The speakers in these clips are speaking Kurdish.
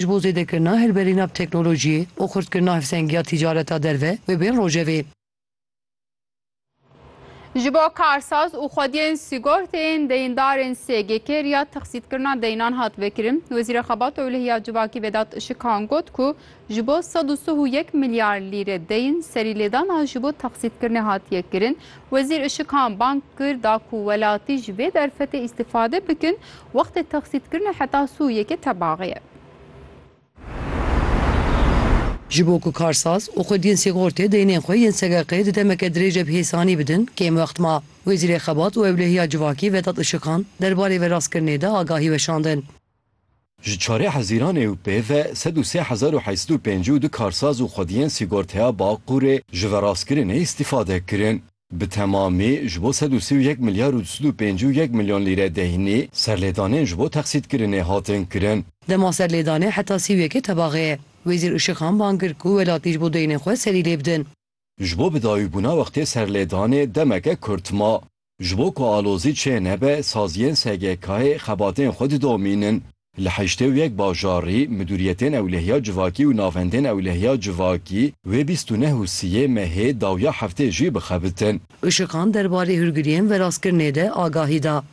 ji bo zêdekirina hilberîna bi teknolojiyê û xurtkirina hevsengiya tîcareta derve bi bên rojevê. Ji bo karsaz û xwediyên sîgorteyên deyindarên SGK riya texsîtkirina deyinan hat vekirin. Wezîra Xebat Ewleh ya Civakî Vedat Işikan got ku ji bo sed û sih û yek milyar lîre deyin serîlêdana ji bo texsîtkirinê hatiye kirin. Wezîr Işikan bang kir da ku welatî ji vê derfetê îstîfade bikin, wextê texsîdkirinê heta sû yeke tebaxê ye. Ji bo ku karsaz û xwediyên sîxortê deynên xwe yên SGK'ê di demeke dirêje bi hêsanî bidin, kêm wext ma. Wezîrê Xebat û Ewlehiya Civakî Vedat Işikan derbarê veraskirinê de agahî weşandin. Ji çarê Hezîran ê û pê ve sed û sê hezar û heşt sed û pêncî û du karsaz û xwediyên sîgorteya Baqûrê ji verastkirinê îstîfade kirin. Bi temamî ji bo sed û sî û yek milyar û du sed û pêncî û yek milyon lîre deynî serlêdanên ji bo texsîtkirinê hatin kirin. Dema serlêdanê heta sî û yekê tebaxê ye. Wezîr Işiqan bang kir ku welatî ji bo deynên xwe serî lê bidin. Ji bo bidawîbûna wextê serlêdanê demeke kurt ma. Ji bo ku alozî çê nebe saziyên SGK'ê xebatên xwe didomînin. Li heştê û yek bajarî midûriyetên ewlehiya civakî û navendên ewlehiya civakî wê bîst û neh û siyê mehê dawiya heftê jî bixebitin. Işiqan derbarê hûrgiriyên verastkirinê de agahî da.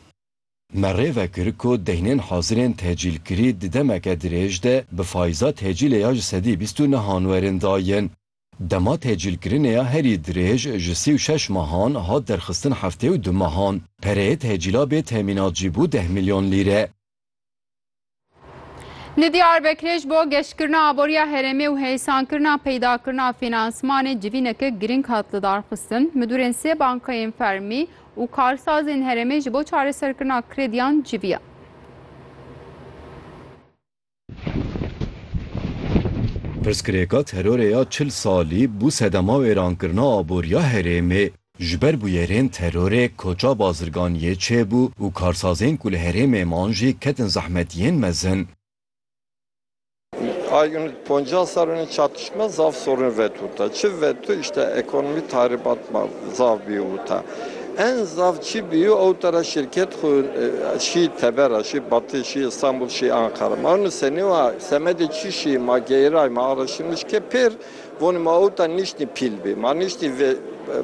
Me rê vekir ku deynên hazirên tecîlkirî di demeke dirêj de bi fayîza tecîlê ya ji sedî bîst û nehan werin dayin. Dema tehcîlkirinê ya herî dirêj ji sî û şeş mehan hat derxistin heftê û du mehan. Pereyê tehcîla bê temînat jî bû deh milyon lîre. Li Diyarbekirê ji bo geşkirina aboriya herêmê û heysankirina peydakirina fînansmanê civîneke girîng hat lidarxistin. Midûrên sê bankayên fermî û karsazên herêmê ji bo çareserkirina krediyan civiyan. Pirsgirêka terorê ya çil salî bû sedema wêrankirina aboriya herêmê. Ji ber bûyerên terorê koça bazirgan yê çêbû û karsazên ku li herêmê man jî ketin zehmetiyên mezin. Poncas sal in çatışma zaf sorun vetûta. Çi vetû, îşte ekonomî tahribat ma zaf bî wûta. En zaf çi bîyo ew tara şirket xwe şî tevera, şî Batı, şî Istanbul, şî Anqara. Ma nu senê wa semedê çi şî ma geyray, ma araştırmış ke pêr vonê ma ew ta niştî pîl bî. Ma niştî vê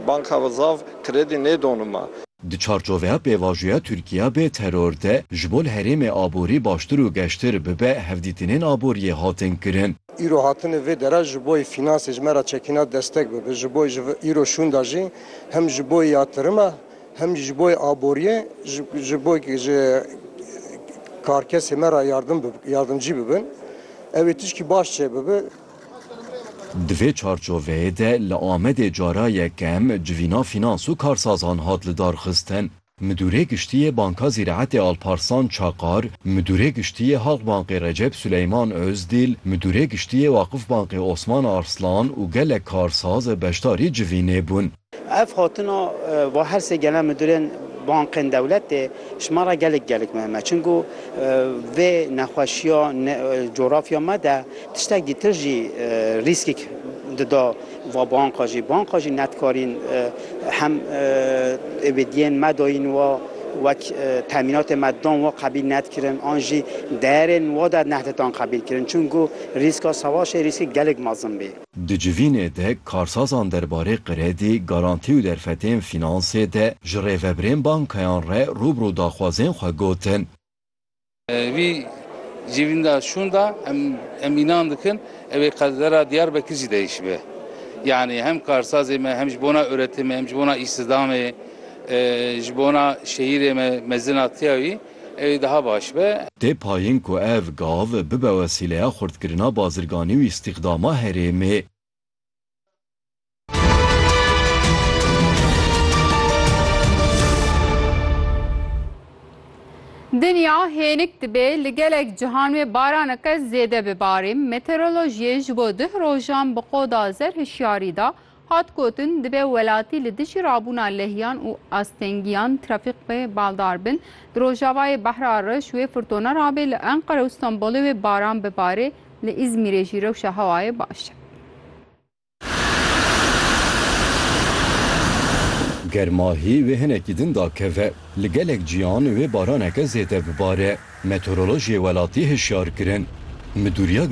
banka ve zaf kredi nêdonê ma. Di çarçoveya pêvajoya Tirkîya bê teror de ji bo li herêmê aborî baştir û geştir bibe hevdîtinên aboriyê hatin kirin. Îro hatinê vê dere ji boî fînansê ji me re çekîna destek bibe. Ji boî ji îro şûnda jî hem ji boî ya tirime hem jî ji boî aboriyê ji bo ji karkesê me re yardimcî bibin. Ew ê tişkî baş çê bibe. Di vê çarçoveyê de li Amedê cara yekem civîna fînans û karsazan hat lidarxistin. Midûrê Giştî yê Banka Zîraetê Alparslan Çakar, Midûrê Giştî yê Halkbankê Recep Suleyman Ozdîl, Midûrê Giştî yê Waqifbankê Osman Arslan û gelek karsaz beşdarî civînê bûn. Ev hatina va her sê genel midûrên bankên dewletê ji me re gelek gelek mihim e. Çimkû vê nexweşiya cografya me de tiştekî tr jî rîskek dida. va banka jî banka jî ne dikarîn hem êbêdiyên me dayîn wa wek temînatê me dan wa qebîl ne dikirin an jî deyerên wa de nehditan qebîl kirin çunku rîska sewaşê rîskê gelek mezin bî. Di civînê de karsazan derbarê qredî, garantî û derfetên fînansê de ji rêvebirên bankayan re rûbirû daxwazên xwe gotin. Vî civînda şûnda em înan dikin ew ê qedera Diyarbekir jî değişibe. Yanî hem karsazê me hem ji bona uretimê hem ji bona îstîdamê ji bona şehîrê me mezin a tiya wî ew ê daha baş be. Tê payîn ku ev gav bibe wesîleya xurtkirina bazirganî û îstîxdama herêmê. Dinya hênik dibê li gelek cihan wê baraneke zêde bibarî. Meteorolojiyê ji bo duh rojan bi qoda zer hişyarî da, hat gotin dibê welatî li dijî rabûna lehiyan û astengiyan trafîk wê baldar bin. Di rojavayê Behra Reş wê firtona rabê li Enqere û Stenbolê wê baran bibarê. Li Îzmîrê jî rewşa hewayê baş e. Germahî wê hinekî din dakeve. Li gelek ciyan wê baraneke zêde bibare. Meteorolojê welatî hişyar kirin. Midûriya